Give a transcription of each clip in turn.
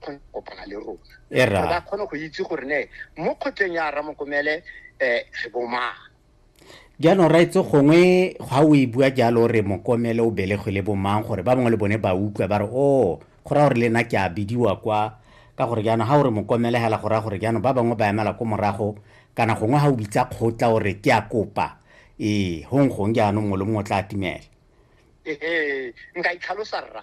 kgone go kopana le rona E ra. gore ba kgone go itse gore ne mo kgotleng ya ramokomele um re bomang jaanong ra itse gongwe ga o e bua jalo o re mokomele o belegwe le bomang gore ba bangwe le bone ba utlwa ba re o go raya gore le nna ke a bidiwa kwa ka gore jaanong ga o re mokomele hela go raya gore jaanong ba bangwe ba emela ko morago kana gongwe ga o bitsa kgotla o re ke a kopa ee gong gong jaanong mongwe le mongwe o tla atumela ehe nka itlhalosa rra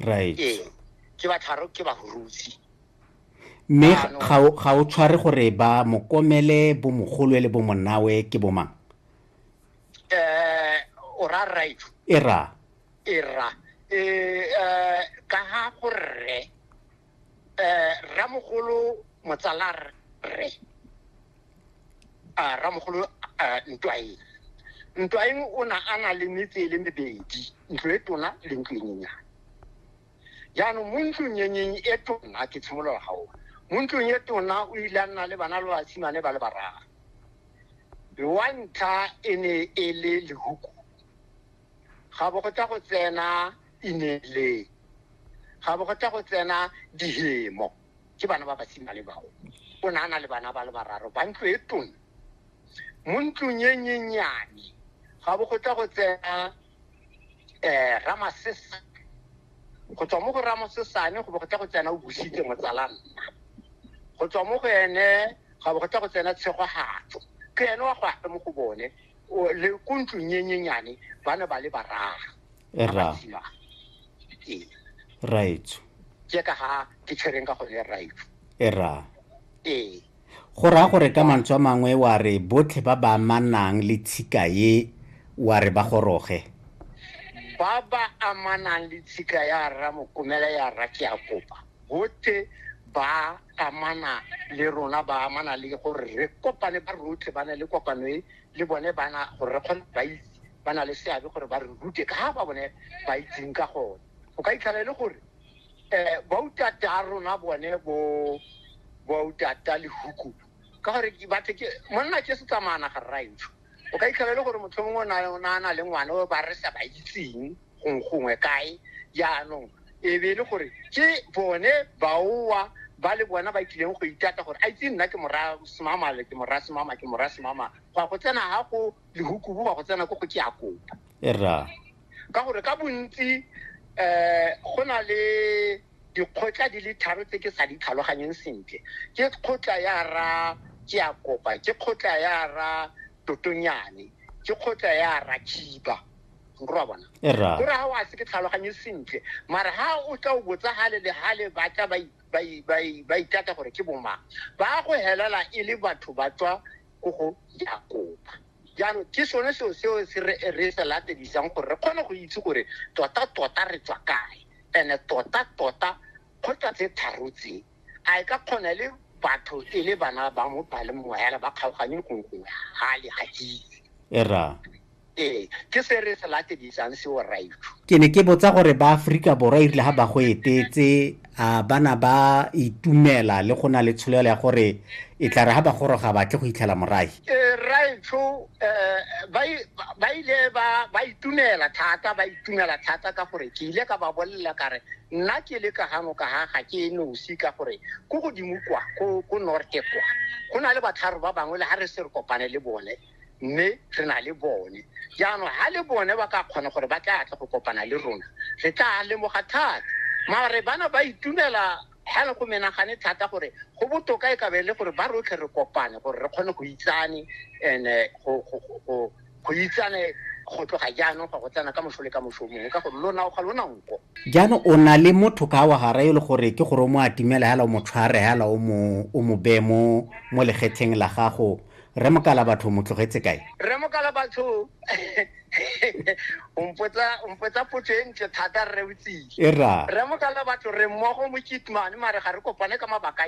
right ee ke ba tharo ke ba rutsi mme ga o tshware gore ba mokomele bo mogolwe le bo monawe ke bo mang eh o ra right e ra e ra e eh, eh ka ha go rre eh ramogolo motsala rre a ramogolo eh, ntwaeng ntwaeng o na a na le metse e le mebedi ntlo e tona le ntlo e nyenyane jaanong mo ntlong yenyeng e tona ke tshimolola ga ona mo ntlong e tona o ile a nna le bana le basimane ba le bararo wa ntlha e ne e le lehuku ga bo go tla go tsena ineleng ga bo go tla go tsena dihemo ke bana ba basimane bao o ne a na le bana ba le bararo ba ntlo e tona mo ntlong e nyenyane ga bo go tla go tsena um ramasesa go tswa mo go ramosesane go bo go tla go tsena o busitse motsala nna go tswa mo go ene ga bo go tla go tsena tshegogatso ke ene wa go ape mo go bone o- le ko ntlong e nyenyane ba ne ba le bararo E ba ra. basimane. Ee. raetso ke ka ga ke tshwereng ka gone right e ra ee go raya gore ka mantswe a mangwe wa re botlhe ba ba amanang le tshika ye wa re ba goroge ba ba amanang le tshika ya rra mokomela ya rra ke a kopa botlhe ba amana le rona ba amana le gore re kopane ba rotlhe ba na le kopano e le bone bana gore re kgone ba itse ba na le seabe gore ba re rute ka ba bone ba itseng ka gone o ka itlhala e le gore um bautata a rona bone bo bautata le huku ka gore ke batho ke monna ke se tsamaya naga rraetsho o ka itlhela e le gore motlho mongwe o na- o na na le ngwana o ba re sa ba itseng gong- gongwe kae jaanong e be e le gore ke bone baowa ba le bona ba tlileng go itata gore a itse nna ke mora semama le ke mora semama ke mora semama go ya go tsena ga go lehukubu go ya go tsena ko go ke a kopa e rra ka gore ka bontsi um go na le dikgotla di le tharo tse ke sa di tlhaloganyeng sentle ke kgotla ya ra ke a kopa ke kgotla ya ra totonyane ke kgotla ya ra khiba nkorwa bona Erra. gore ga o a se ke tlhaloganye sentle mara ga o tla o botsa gale le gale ba tla ba i- ba i- ba i- ba itata gore ke bomang ba go helela e le batho ba tswa ko go ya kopa jaanong ke sone seo seo se re re se latedisang gore re kgone go itse gore tota tota re tswa kae ene tota tota kgotla tse tharo tse a e ka kgona e le batho e le bana ba mo ba le mowa hela ba kgaoganye gongwe ga le ga itse era ee ke se re se latedisang seo raitho ke ne ke botsa gore ba aforika borwa e rile ga ba go etetse a ba na ba itumela le go na le tsholelo ya gore e tla re ga ba goroga batle go itlhela morae eh, raitsho eh, ba ile ba itumela thata ba itumela thata ka gore ke ile ka ba bolelela kare nna ke le ka gano ka ga ga ke nosi ka gore ko godimo kwa ko norte kwa go na le batlharo ba bangwe le ga re se re kopane le bone mme re na le bone jaanong ga le bone ba ka kgona gore ba tla tle go kopana le rona re tla lemoga thata mare bana ba itumela ga le go menagane thata gore go botoka e kabe e le gore ba rotlhe re kopane gore re kgone go itsane and eh, go- go- go- go- go itsane go tloga jaanong ga go tsena ka moso le ka moso mongwe ka gore lona o ga lona nko jaanong o na le motho ka wa gara e le gore ke gore o mo atimela hela o mo tshware hela o mo o mo beye mo mo legetsheng la gago Rre Mokalabatho mo tlogetse kae? Rre Mokalabatho o mpotsa o mpotsa potso e ntle thata rre o tsile. E ra. Rre Mokalabatho re mmogo mo Kitman mare ga re kopane ka mabaka